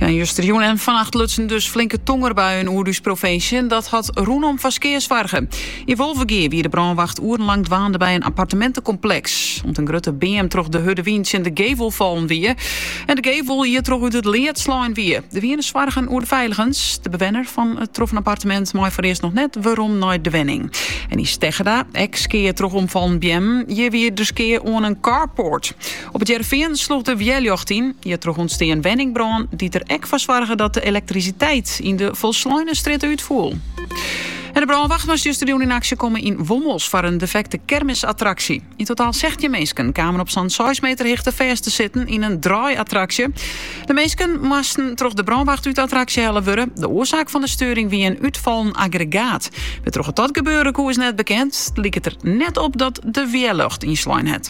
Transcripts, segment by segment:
Ja, justerjûn en vannacht lutsen dus flinke tongerbuien oer ús provinsje. En dat hat rûnom foar skea soarge. Yn Wolvegea wie de brânwacht oerenlang dwaande by in apparteminte­kompleks, omt in grutte beam troch de hurde wyn tsjin de gevel fallen wie. En de gevel hjirtroch út it lead slein wie. Der wiene soargen oer de feiligens. De bewenner fan it troffen appartemint mei foarearst noch net werom nei de wenning. En yn Steggerda ek skea troch omfallen beammen. Hjir wie der skea oan in carport. Op It Hearrenfean sloech de wjerljocht yn. Hjirtroch ûntstean in wenningbrân, dy't der ek foar soarge dat de elektrisiteit yn de folsleine strjitte útfoel. En de brânwacht moast justerjûn yn aksje komme yn Wommels foar in defekte kermisattraksje. Yn totaal sechstjin minsken kamen op sa'n seis meter hichte fêst te sitten yn in draaiattraksje. De minsken moasten troch de brânwacht út de attraksje helle wurde. De oarsaak fan de steuring wie in útfallen aggregaat. Wêrtroch't dat gebeure koe is net bekend. It liket der net op dat de wjerljocht ynslein hat.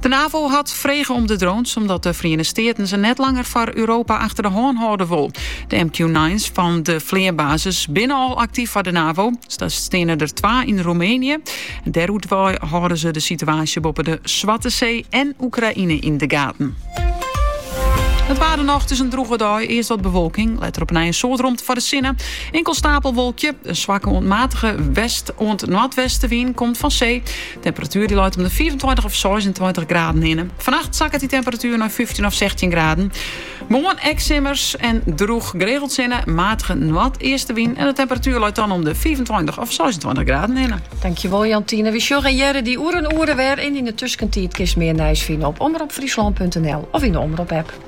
De NAVO hat frege om de drones omdat de Feriene Steaten se net langer foar Europa achter de hân hâlde wol. De MQ-9's fan de fleanbasis binne al aktyf foar de NAVO. Daar steane der twa yn Roemenië. Dêrút wei hâlde se de situaasje boppe de Swarte See en Oekraïne yn de gaten. It waar dan noch, it is in droege dei. Earst wat bewolking, letter op 'e dei in soad romte foar de sinne. In inkeld steapelwolkje, in swakke oant matige west- oant noardwestewyn komt fan see. Temperatuer leit om de 25 of 26 graden hinne. Fannacht sakket de temperatuer nei 15 of 16 graden. Moarn ek simmersk en droech geregeld sinne, matige noardeastewyn en de temperatuer leit dan om de 25 of 26 graden hinne. Tankewol Jantine. Wy sjogge en hearre dy oer in oere wer en yn de tuskentiid kist mear nijs fine op omropfryslan.nl of yn de Omrop-app.